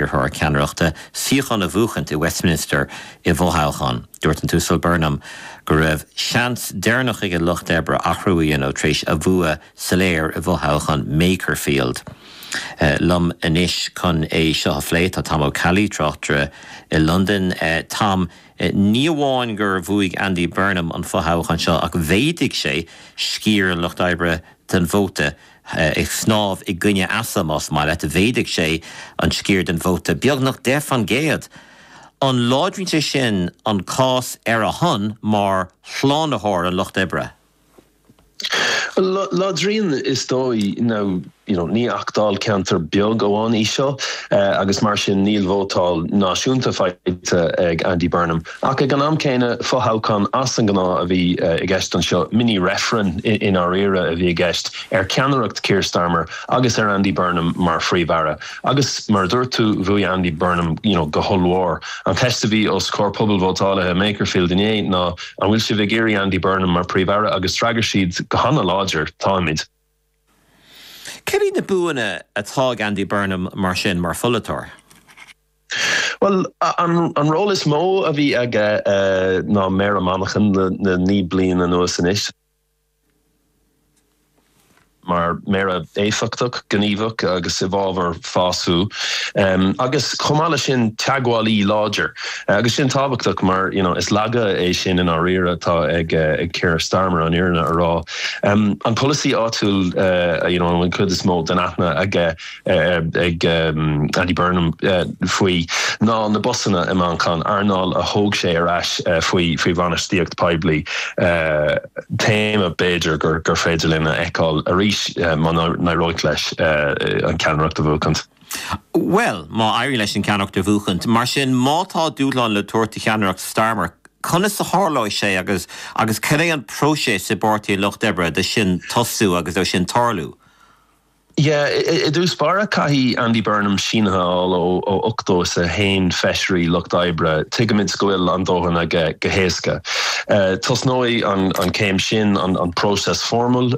iarrthóir ceannaireachta, suíochán a bhuachaint i Westminster i bhfothoghchán. Dúirt an tUasal Burnham go raibh seans deireanach ag an Lucht Oibre athrú a dhéanamh tar éis a bhua soiléir i bhfothoghchán Makerfield. Liom anois chun é seo a phlé tá Tom Ó Ceallaigh, tráchtaire i Londain. Tom, ní amháin gur bhuaigh Andy Burnham an fothoghchán seo ach mhéadaigh sé sciar an Lucht Oibre den vóta. ag snámh i gcoinne easa, más maith leat, mhéadaigh sé an sciar den vóta beagnach deich faoin gcéad. An láidríonn sé sin an cás ar a shon mar shlánaitheoir an lucht oibre? Láidríonn is dóigh, now níl ach dáilcheantar beag amháin í seo agus mar sin níl vótáil náisiúnta faighte ag Andy Burnham. Ach ag an am céanna, fo-thoghchán as an ngnáth a bhí i gceist anseo, mini-reifreann i ndáiríre a bhí i gceist ar cheannaireacht Keir Starmer agus ar Andy Burnham mar Phríomh-Aire. Agus mar a dúirt tú, bhuaigh Andy Burnham, you know, go hollmhór. An cheist a bhí os comhair pobal vótálaithe Makerfield inné ná An bhfuil sibh ag iarraidh Andy Burnham mar Phríomh-Aire? Agus d'fhreagair siad go hana-láidir, Táimid. Céard iad na buanna atá ag Andy Burnham mar sin, mar pholaiteoir? Bhuel, an ról is mó a bhí aige ná Méara Mhanchain le naoi bliain anuas anois. mar Méara éifeachtach, gníomhach agus i bhfabhar fás agus chomh maith le sin teagmhálaí láidir agus sin tábhachtach mar you know is laige é sin i ndáiríre atá ag Keir Starmer an fhírinne a rá. An polasaí áitiúil you know an chuid is mó den aithne aige ag Andy Burnham faoi ná na busanna i Manchain, earnáil a thóg sé ar ais faoi bhainistíocht poiblí, téama b'fhéidir gur féidir linn a fheiceáil arís má n-éireoidh leis an cheannaireacht a bhuachaint. Bhuel, má éiríonn leis an cheannaireacht a bhuachaint, mar sin, má tá dúshlán le tabhairt do cheannaireacht Starmer, conas a tharlóidh sé agus agus cén é an próiseas i bPáirtí an Lucht Oibre do sin tosú agus do sin tarlú? Yeah, i dtús báire caithfidh Andy Burnham sínithe a fháil ó ochtó is a haon feisirí lucht oibre, tuigimid go bhfuil an dóthain aige go héasca. Tosnóidh an céim sin an próiseas foirmiúil,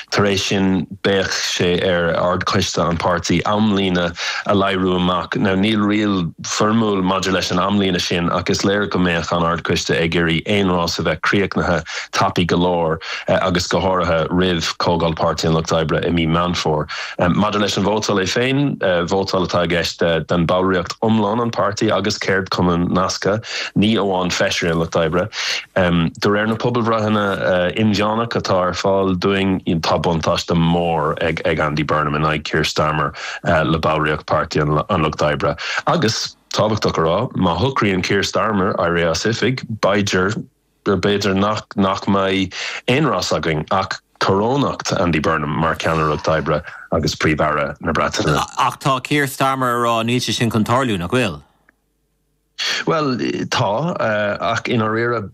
tar éis sin beidh sé ar Ard-Choiste an páirtí amlíne a léiriú amach. Now níl riail foirmiúil maidir leis an amlíne sin ach is léir go mbeadh an Ardchoiste ag iarraidh aon rás a bheith críochnaithe tapaidh go leor agus go háirithe roimh Chomhdháil Páirtí an Lucht Oibre i mí Meán Fómhair. Maidir leis an vótáil é féin, vótáil atá i gceist den bhallraíocht iomlán an páirtí agus ceardchumainn nasctha, ní amháin feisirí an Lucht Oibre. De réir na pobalbhreitheanna inmheánach atá ar fáil dúinn tá buntáiste mór ag Andy Burnham in aghaidh Keir Starmer. le ballraíocht Páirtí an Lucht Oibre. Agus, tábhachtach a rá, má shocraíonn Keir Starmer éirí as oifig, b'fhéidir, b'fhéidir nach mbeidh aon rás againn ach corónú Andy Burnham mar Cheannaire an Lucht Oibre agus Príomh Aire na Breataine. Ach tá Keir Starmer a rá níl sé sin chun tarlú, nach bhfuil? Bhuel, tá, ach i ndáiríre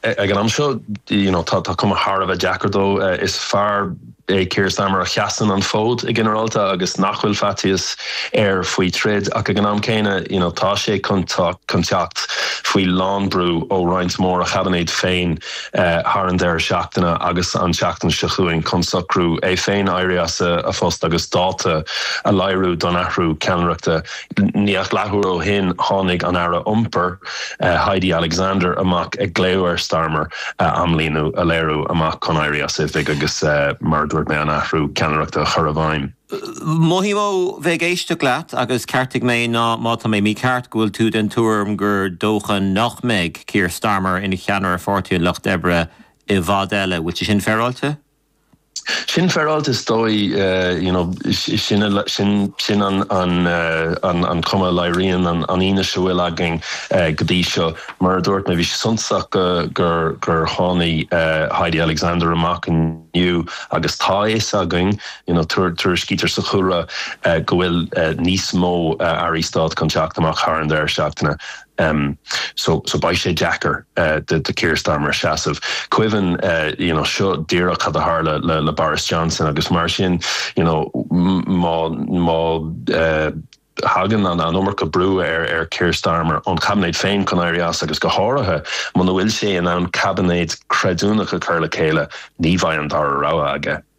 ag an am seo you know tá cuma thar a bheith deacair dó. Is fear é Keir Starmer a sheasann an fód i ginearálta agus nach bhfuil faitíos air faoi troid ach ag an am céanna you know tá sé chun chun teacht faoi lán brú ó roinnt mór a Chaibinéid féin thar an deireadh seachtaine agus an tseachtain seo chugainn chun socrú é féin éirí as a phost agus dáta a léiriú don athrú ceannaireachta. Níl ach leathuair ó shin tháinig an Aire Iompair, Heidi Alexander, amach ag glaoigh ar Starmer amlíne, a léiriú amach chun éirí as oifig agus, mar a dúirt mé, an athrú ceannaireachta a chur i bhfeidhm. Mothaím ó bheith ag éisteacht leat, agus ceartaigh mé má tá mé mícheart, go bhfuil tú den tuairim gur dócha nach mbeidh Keir Starmer ina cheannaire ar Pháirtí an Lucht Oibre i bhfad eile. Bhfuil sé sin féaráilte? Sin féaráilte is dóigh, you know, sin an chuma a léiríonn an fhianaise a bhfuil againn go dtí seo. Mar a dúirt mé bhí sé suntasach gur tháinig Heidi Alexander amach inniu agus tá a fhios againn, you know, tuairiscítear sa chúlra go bhfuil níos mó Airí Stáit chun teacht amach thar an deireadh seachtaine. em so so beidh sé deacair do do Keir Starmer seasamh. Cuimhin eh you know seo díreach cad a tharla le le Boris Johnson agus mar sin you know má má eh thagann an an iomarca brú ar ar Keir Starmer ón Chaibinéid féin chun éirí as agus go háirithe muna bhfuil sé in ann Caibinéid creidiúnach a chur le chéile ní bheidh an dara rogha aige.